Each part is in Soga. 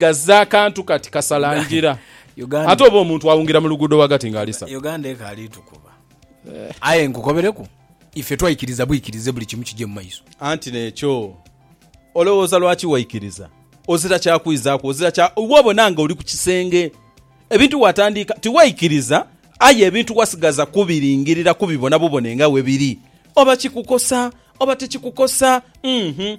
Gaze akantu kati kasala ngira. Uganda. Ate oba omuntu awungira mu luguudo ghagati nga alisa. Uganda ekaali tukuba. Aye nkukobereku, ife twaikiriza bwikirize buli kimu kije mu maiso. Anti n'ekyo olowooza lwaki waikiriza? Ozira kya kwizaaku, ozira kya. Iwe obona nga oli ku kisenge. Ebintu waatandiika tiwaikiriza, aye ebintu wasigaza kubiringirira kubibona bubone nga bwe biri. Oba kikukosa oba tikikukosa. Uhmm.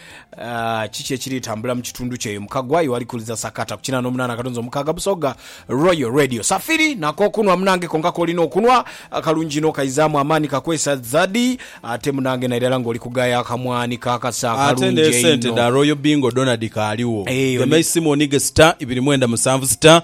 Kiki ekiri tambula mu kitundu kyo eyo mukagwa iwe ali kuliza sakata ku kinana omunana akatunzi omukaaga Busoga Royal Radio Safiri na kokunwa munange konka kolina okunwa akalungi inho kaizamu amaani kakwesa zadi ate munange nairala nga oli kugaya akamwani ka kasa akalungi einho. Ate ne sente dha Royal Bingo dhona dhikaaliwo. Eyo ni. Gemai Simoni ghe star ibiri mwenda musanvu star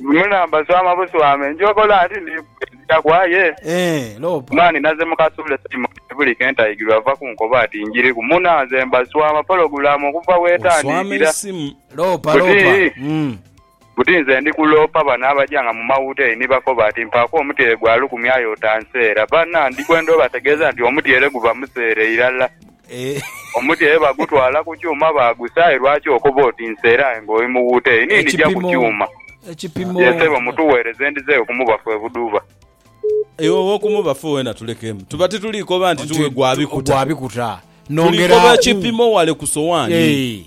Mu namba swama buswame, njogola nti ndi kwedhira ku aye mani naze mu kasuule time kati buli ke ntaigirwa ava kunkoba ati njiriku muna nze mba swama pologulamu okuva wetandikira buti nze ndi kuloopa bano abaja nga mu mawuteeri ni bakoba ati mpaaku omutyere gwa lukumi aye otanseera. Bana ndi kwenda obategeeza nti omutyere guba museere irala. Omuti aye bagutwala ku kyuma baagusa aye lwaki okoba oti nsera aye nga oli mughuuta eyo ni ndija ku kyuma. Ye sebo mutuweereze ndidheyo ku mubafu e Buduba. Iwe ow'oku mubafu weena tulekemu. Tuba tituli koba nti tuwe gwa bikuta. Tuli koba ekipimo wale ku sowaani.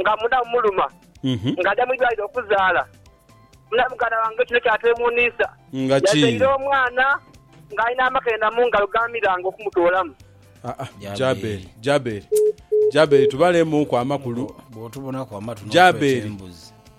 nga muna mumuluma nga aja mu idwaliro okuzaala. Muna muganda wange kino kyateewuunisa. Yazaire omwana ng'alina amakenda mu ngalo g'amiranga okumutoolamu. Aa, Jaberi, Jaberi, Jaberi tubaleemuuku amakulu. Bw'otubonaku amatu n'okweta embuzi.